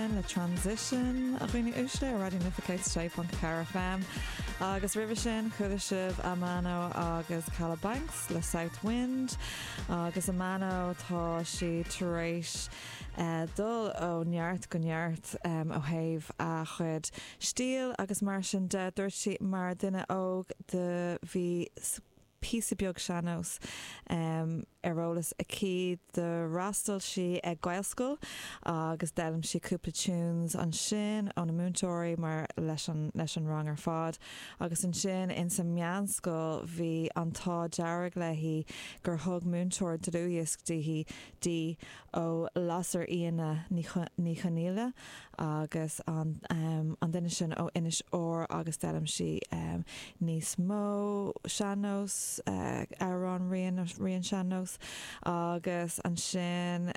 Again le Transition a dhaoine uaisle ar Raidió na Life 106.4 FM agus roimhe sin chuala sibh Amano agus Kalabanx le Southwind agus Amano tá sí tar éis dul ó neart go neart ó thaobh a chuid stíl agus mar sin de dúirt sí mar dhuine óg do bhí píosa beag sean-nós ar eolas aici. D'fhreastail sí ag Gaelscoil agus d'fhoghlaim sí cúpla tunes ansin ó na múinteoirí, mar leis an rang ar fad. Agus ansin ins an meánscoil bhí an t-ádh dearg léi gur thug múinteoir dlúthdhiosc daoithi, di, ó Lasairfhíona Ní Chonaola agus an duine sin ó Inis Oírr agus d'fhoghlaim sí níos mó sean-nós, amhráin, roinnt sean-nós agus ansin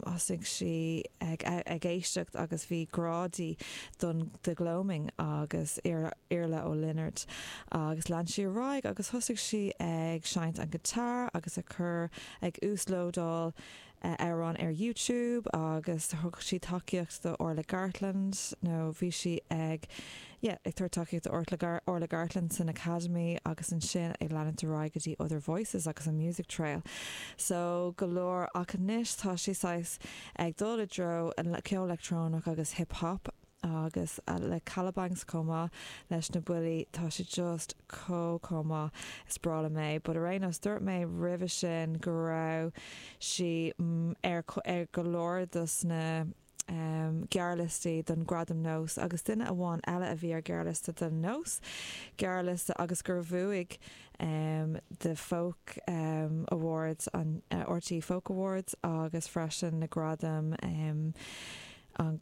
thosaigh sí ag éisteacht agus bhí grá di don The Gloaming agus Iarla Ó Lionáird agus lean sí ar aghaidh agus thosaigh sí ag seinnt an guitar agus ag cur, ag uaslódáil. amhrán ar YouTube agus thug sí tacaíocht do Orla Gartland nó bhí sí ag yeah ag tabhairt tacaíocht do Orla Gar Orla Gartland san Academy agus ansin ag leanúint ar aghaidh go dtí Other Voices agus an Music Trail so go leor ach anois tá sí saghas ag dul i dtreo an ceol leictreonach agus hip hop Agus le Kalabanx chomh maith leis na buillí, tá sé just chomh, chomh maith is breá liom é. But ar aon nós, dúirt mé roimhe sin go raibh sí ar, ar go leor dos na ehm gearrliostaí don Gradam Nós agus duine amháin eile a bhí ar ghearrliosta don Nós, gearrliosta agus gur bhuaigh ehm The Folk ehm Awards an, RTÉ Folk Awards agus freisin na gradaim ehm, an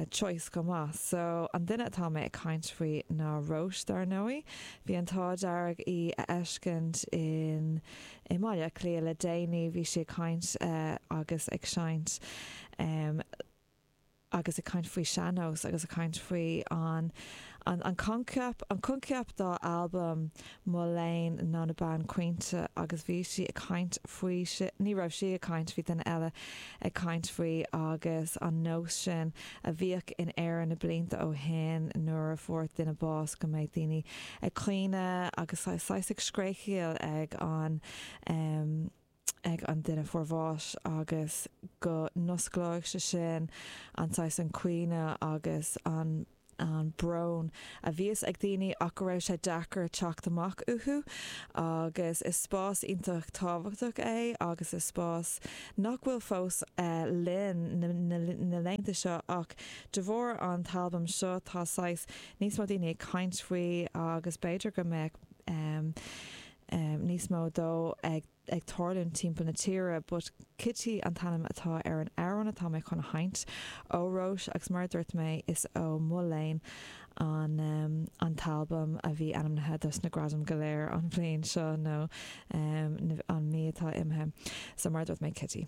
Choice chomh maith so an duine atá mé ag caint faoi ná Róis dar ndóigh. Bhí an t-ádh dearg í a fheiscint in i mBaile Átha Cliath le déanaí bhí sí ag caint agus ag seinnt em agus ag caint faoi sean-nós agus ag caint faoi an An coincheap, an coincheap dá albam Mo Léan ná na bean caointe agus bhí sí ag caint faoi sin, ní raibh sí ag caint, bhí duine eile ag caint faoi agus an nós sin a bhíodh in Éirinn na blianta ó shin nuair a fuair duine bás go mbeadh daoine ag caoineadh agus saghas ag scréachaíl ag an ag an duine a fuair bás agus go n-osclóidh sé sin an saghas an caoineadh agus an an brón a bhíos ag daoine ach go raibh sé deacair teacht amach uathu agus is spás iontach tábhachtach é agus is spás nach bhfuil fós linn na laethanta seo ach de bharr an t-albam seo tá saghas níos mó daoine ag caint faoi agus b'fhéidir go mbeadh níos mó de ag ag tarlúint timpeall na tíre but Kitty an t-ainm atá ar an amhrán atá mé chun a sheinnt ó Róis agus mar a dúirt mé is ó Mo Léan an an t-albam a bhí ainmnithe dos na gradaim go léir an bhliain seo nó an mhí atá imithe so mar a dúirt mé Kitty.